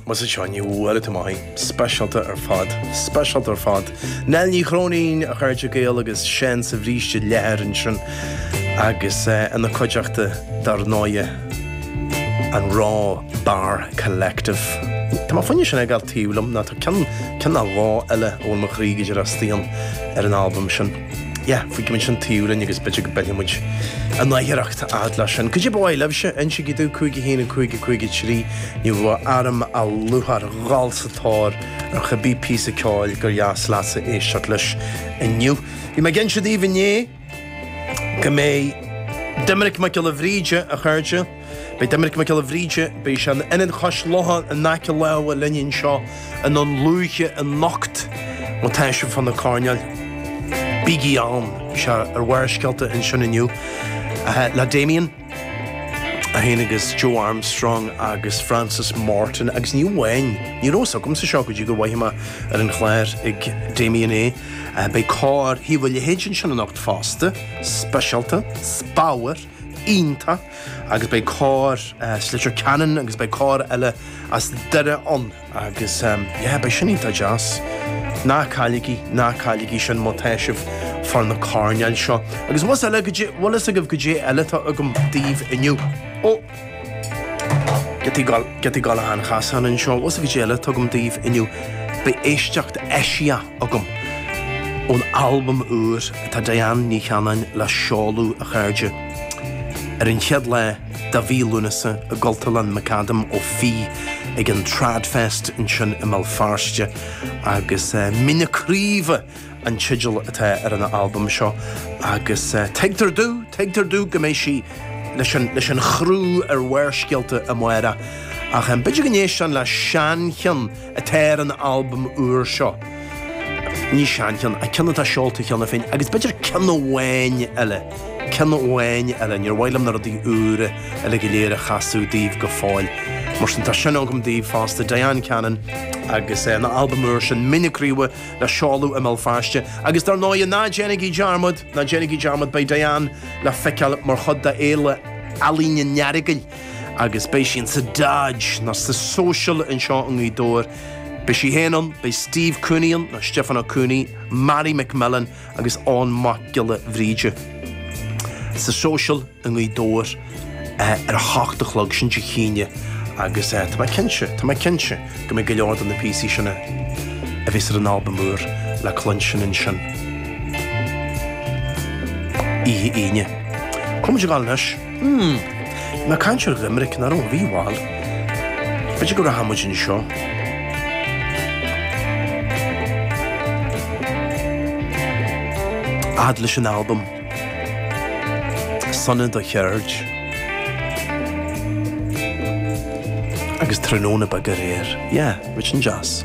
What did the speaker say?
Más é seo inniu uair atá maith aith. Speisialta ar fad. Speisialta ar fad. Nell Ní Chróinín, a chairde Gael agus Seán sa Bhríste Leathair ansin agus eh, ina cuideachta dar ndóighe, an Raw Bar Collective. Tá mé ag smaoineamh sin a fhágáil taobh liom, nó tá ceann, ceann nó dhó eile a bhfuil mo chroí go díreach istigh ann ar an albam sin. Yeah, fágfaimid sin taobh linn agus b'fhéidir go bpillfimid in aithghiorracht a fhad leis sin. Cad é ba mhaith libhse? Insígí domh 51553, Ní bheadh orm ach lúcháir a dhul sa tóir ar cibé píosa ceoil gur dheas leat a éisteacht leis inniu. Bhí mé ag inse daoibh inné go mbeidh Doiminic Mac Giolla Bhríde, a chairde, Beidh Doiminic Mac Giolla Bhríde, beidh sé in Ionad Chois Locha in aice láimhe linn anseo i nDún Lúiche anocht má tá sibh fá na coirnéil, bígí ann! Bhí sé ar Bharrscéalta ansin inniu le Damien, é féin agus Joe Armstrong agus Frances Morton agus ní amháin, ní raibh fhios agamsa seo go dtí gur mhothaigh mé ar an chlár ag Damien é, beidh Cór Thaobh an Leithid ansin anocht fosta, speisialta, is bodhar! iontach agus beidh cór as Leitir Ceanainn agus beidh cór eile as Doire ann agus yeah beidh sin iontach deas. Ná cailligí, ná cailligí sin má tá sibh fá na coirnéil seo. Agus bhfuil fhios eile cad é- bhfuil fhios agaibh cad é eile atá agam daoibh inniu? Ó! Giotaí Gall- Giotaí Gallacháin Chasáin anseo. Bhfuil fhios agaibh cad é eile atá agam daoibh inniu? Beidh éisteacht eisiach. agam. Ón albam úr atá Diane Ní Chanainn le seoladh, a chairde, ar an chéad lá de mhí Lúnasa i gCultúrlann McAdam Ó Fiaich ag an TradFest ansin i mBéal Feirste agus Mín na Craoibhe an teideal atá ar an albam seo agus tuigtear domh, tuigtear domh go mbeidh sí leis an, leis an chriú ar Bharrscéalta amárach ach b'fhéidir go n-éistfinn le seancheann atá ar an albam úr seo. Ní seancheann, ach ceann atá seolta cheana féin, agus b'fhéidir ceann amháin eile, ceann amháin eile. Níor mhaith liom na rudaí úra eile go léir a chasadh daoibh go fóill, mar sin tá sin agam daoibh fosta, Diane Cannon agus an albam úr sin, Mín na Craoibhe, le seoladh i mBéal Feirste. Agus dar ndóigh, Ná Déanaigí Dearmad, Ná Déanaigí Dearmad beidh Diane le feiceáil mar chuid d'Fhéile Ealaíne an Earagail agus beidh sí insa Dodge nó sa Social anseo i nGaoth Dobhair. Beidh sí féin ann, beidh Steve Cooney ann, nó Stiofán Ó Cooney, Mary McMillen agus Eoghan Mac Giolla Bhríde. Sa Social i nGaoth Dobhair ar a hocht a chlog, sin Dé hAoine, agus tá mé cinnte, tá mé cinnte go mbeidh go leor de na píosaí sin a bheas ar an albam úr le cluinstin ansin oíche Aoine. Cá bhfuil muid ag dul anois. Umm. Ná caintear ar limerick ná raibh rómhall. B'fhéidir go rachaidh muid anseo. fhad leis an albam. Sona do cheird. Agus tráthnóna beag aréir. Yeah, muid an deas.